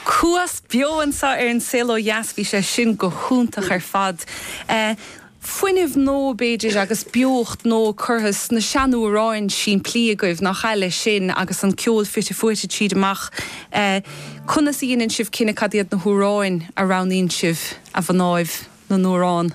Cuas beo anso ar An Saol Ó Dheas. Bhí sé sin go hiontach ar fad. Fuinneamh nua, b'fhéidir, agus beocht nua curtha sna seanamhráin simplí agaibh, nach ea, leis sin agus an ceol fite fuaite tríd amach. Conas a dheineann sibh cinneadh cad iad na hamhráin a roghnaíonn sibh, a mhnáibh na n-amhrán?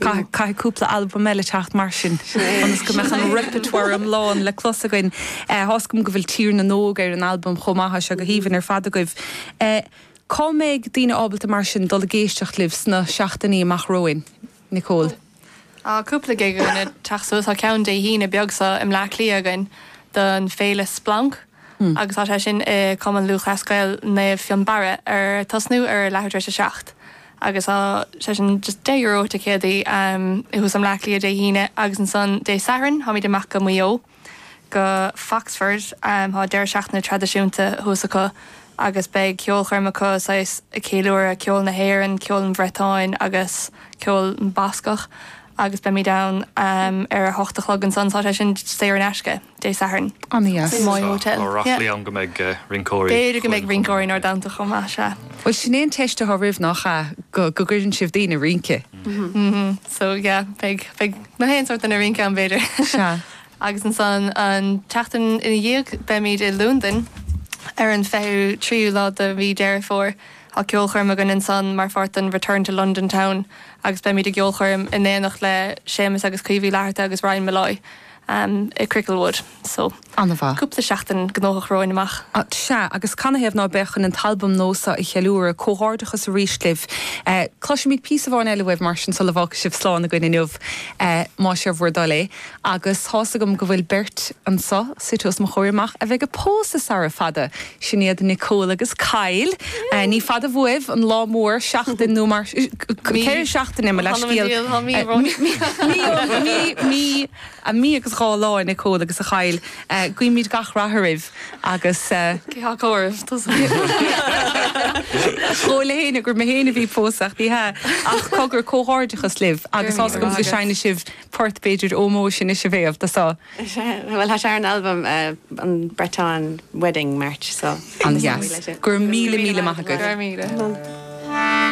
Caithfidh cúpla albam eile teacht mar sin ionas go mbeadh an repertoire iomlán le clos againn. Thá's agam go bhfuil Tír na nÓg ar an albam chomh maith, tá sé go haoibhinn ar fad agaibh. Cá mbeidh daoine ábalta mar sin dul ag éisteacht libh sna seachtainí amach romhainn? Nicole. Tá cúpla gig againn ag teacht suas, tá ceann Dé hAoine beag seo i mBleá Cliath againn don féile Splanc. agus tá sé sin i Cumann Lúthchleas Gael Naomh Fionnbarra ar tosnú ar leathuair tar éis a seacht agus tá sé sin just deich euro ticéad so Bleá Cliath Dé hAoine agus ansan Dé Sathairn táimid amach go Maigh Eo go Foxford tá deireadh seachtaine traidisiúnta thuas acu agus beidh ceolchoirm acu saghas ag ceiliúradh ceol na hÉireann, ceol an Bhriotáin agus ceol Bascach agus beimid ann ar a hocht a chlog ansan tá sé sin saor in aisce. Dé Sathairn. Insa Moy Hotel. Tá ráflaí Yeah. ann go mbeidh rinceoirí. B'fhéidir go mbeidh Chluain rinceoirí in Ard Amhtach chomh maith, sea. Bhuel, sin é an teist athá oraibh, nach ea? Go, go gcuireann sibh daoine ag rince. Mhm. So, yeah, beidh, beidh na haon sórt duine ag rince ann, b'fhéidir. Sea. Agus ansan, an tseachtain ina dhiaidh, beimid i Londain ar an 23ú lá de mhí Deireadh Fómhair. Tá ceolchoirm againn ansan mar pháirt den Return to London Town agus beimid i gceolchoirm in éineacht le Séamus agus Caoimhe Uí Fhlatharta agus Ryan Molloy. am i Cricklewood. So. An-mhaith. Cúpla seachtain gnóthach romhainn amach. Sea, agus canathaobh ná beadh chun an t-albam nua so a cheiliúradh? Comhghairdeachas arís libh. Cloisfimid píosa amháin eile uaibh mar sin sula bhfágfaidh sibh slán againn inniu, más é bhur dtoil é. Agus tá's agam go bhfuil beirt anso, suite os mo chomhair amach, a bheidh ag pósadh sara fada! Sin iad Nicole agus Kyle. Ní fada bhuaibh an lá mór, seachtain nó ceithre seachtaine, mo leithscéal. Mí a mí agus dhá lá a Nicole agus a Kyle. Guímid gach rath oraibh agus. Cé acu oraibh tusa? Chuala mé fhéin gur mé fhéin a bhí pósadh ní hea ach cogar comhghairdeachas libh agus tá súil agam go seinnfidh sibh port b'fhéidir ómóis anois a Mhéabh, do seo. Bhuel tá sé ar an albam an Breton Wedding March so. Ana dheas. Go raibh míle míle maith agat. Go raibh míle.